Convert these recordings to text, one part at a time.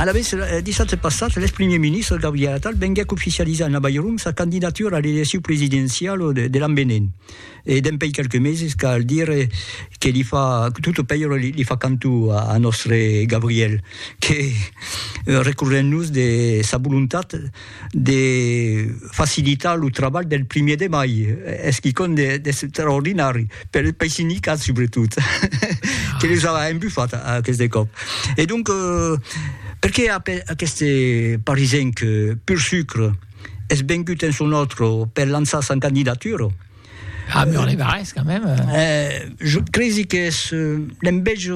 Alavetz, dissabte passat, l'èx primièr ministre Gabriel Attal venguèc oficializar en Avairon sa candidatura a l'elecciu presidenciau de l'an venent. E dempèi quelques meses cal dire que li fa, tot lo pèire li fa cantó a nòstre Gabriel, que recorrent-nos de sa volontat, de facilitar lo trabalh del primièr de mai, es quicòm d'extraordinari, per, pei sindicat subretot, que les a embufat aqueste còp. E donc, perqué aqueste parisenc pur sucre es vengut en son òtro per lançar sa candidatura? A Mur-les-Barrés, quand même! Eh, jo cresi qu'es l'enveja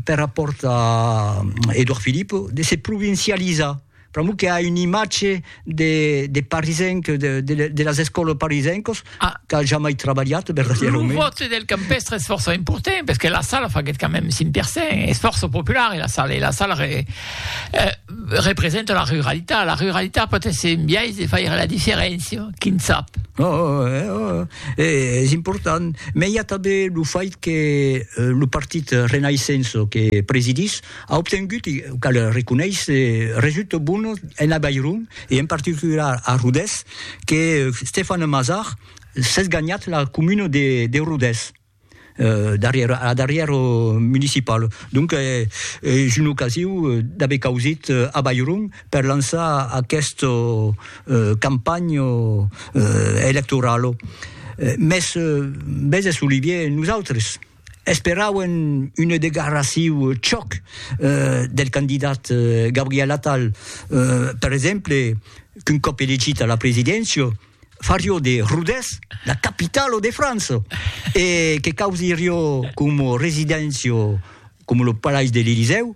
per rapòrt a Edouard Philippe de se provincializar, Pr'amor que a un imatge de, de parisenc, de, de, de las escòlas parisencos, ah. qu'a jamai trabalhat, verdaderament. Lo vote del campestre es força important, parce que la sala faguet quand même 5%, es força popular, la sala, la sala re, eh, representa la ruralitat, la ruralitat pot ser un biais de faire la diferència, quin sap. Oh, oh, eh, oh, eh, és important, mais hi a també lo fait que eh, lo partit Renaissenço que presidís, A obtengut, e cal reconéisser, resultats bones en Avairon e en particular a Rodés, que Stéphane Mazard s'es ganhat la comuna de Rodés darrièr a la darrièra municipala. Donc es una ocasiu d'aver causit Avairon per lançar aquesta campanha electorala. Mès, veses Olivier, nosautres, Esperauen una degarraciu chòc del candidat Gabriel Attal, per exemple, qu'un còp elegit a la presidéncia, farió de Rodés la capitala de França e que causirió coma residéncia coma lo Palais de l'Elysèu,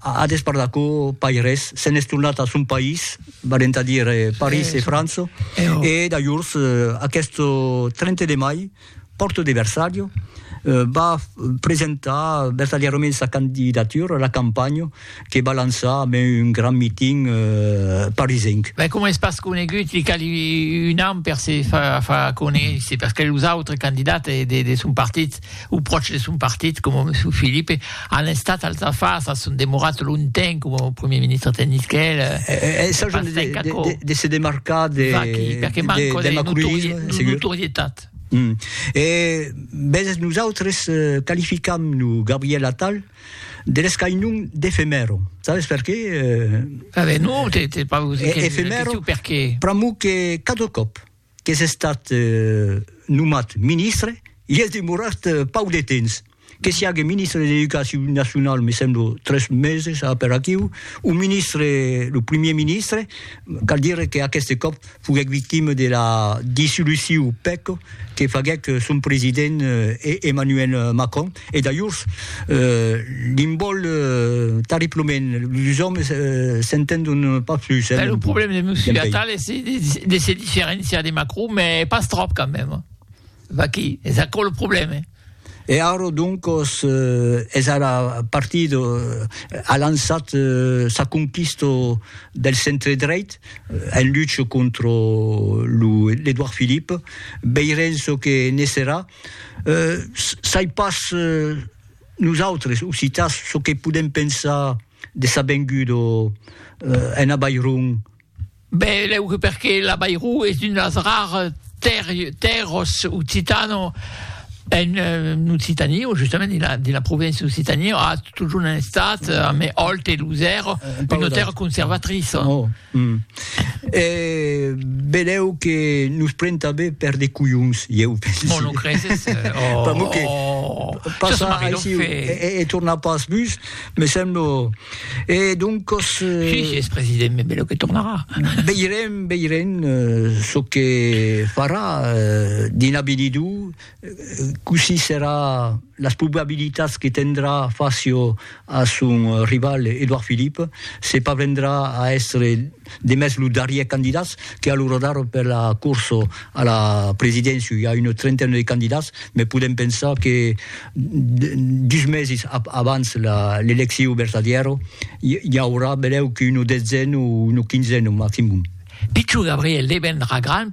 A despart d'aquò, pas res, se'n es tornat a son país, valent a dire París e França, e dajors, aqueth 30 de mai, Porto de Versalho, va presentar vertadièrament sa candidatura a la campanha que va lançar amb un grand meeting parisenc. Mès coma es pas conegut, li cali un an per se far conéisser, perque los autres candidats de son partit o pròches de son partit, coma Monsieur Philippe, an estat als afars, a son demorat longtemps coma Premier Ministre de Nisquel. Eh, eh, s'ajan de, de, de se demarcar de, Vaqui, perquè de, manco de, de macronisme, de notorietat. Mm. E vezes nosaltres eh, qualificam lo Gabriel Attal de l'escainon d'efemèro. Sabes per qué? Eh, ah ben non, t'es pas... E, efemèro, per qué? Pramo que cada còp qu'es estat nomat ministre, i es demorat pauc de temps, que siague ministre de l'Educacion Nacionau, me semblo, tres meses a per aquiu, o ministre, lo primier ministre, cal dire que aqueste còp foguèc victima de la dissoluciu pèc que faguèc son president Emmanuel Macron. E dajors, li'n vòl tarriplement, los òmes s'entendon pas plus. Lo problèm de Monsieur Attal es de se diferenciar de Macron, mès pas tròp quand mèm. Vaquí, es aquò lo problèm. E ara, doncas, es ara partit, a lançat sa conquista del centre-dreit, en lucha contra lo Edouard Philippe. Veirem çò que ne serà. Sai pas nosautres, occitans, çò que podèm pensar de sa venguda en Avairon. Ben, lèu que perque l'Avairó es una de las raras tèrras occitanas en Occitània, o justament dins la provincia d'Occitània, a totjorn estat, a mai alt e lusèr, una tèrra conservatriça. E belèu que nos pren tanben per de colhons, ieu pensi. Bon, lo creses? Pr'amor que passar aici e tornar pas bus, me semblo. E doncos... Si, si es president, me belèu que tornarà. Veirem, veirem çò que farà dins l'avinidor, Cossí serà las probabilitats que tendrà facio a son rival Edouard Philippe se parvendrà a èstre demest lo darrièr candidats que a lo radar per la corsa a la presidéncia i a una trentaina de candidats me podèm pensar que dus mesis abans l'elecciu vertadièra i aurà benlèu qu'una detzena o una quinzena maximum. Pichon Gabriel devendrà grand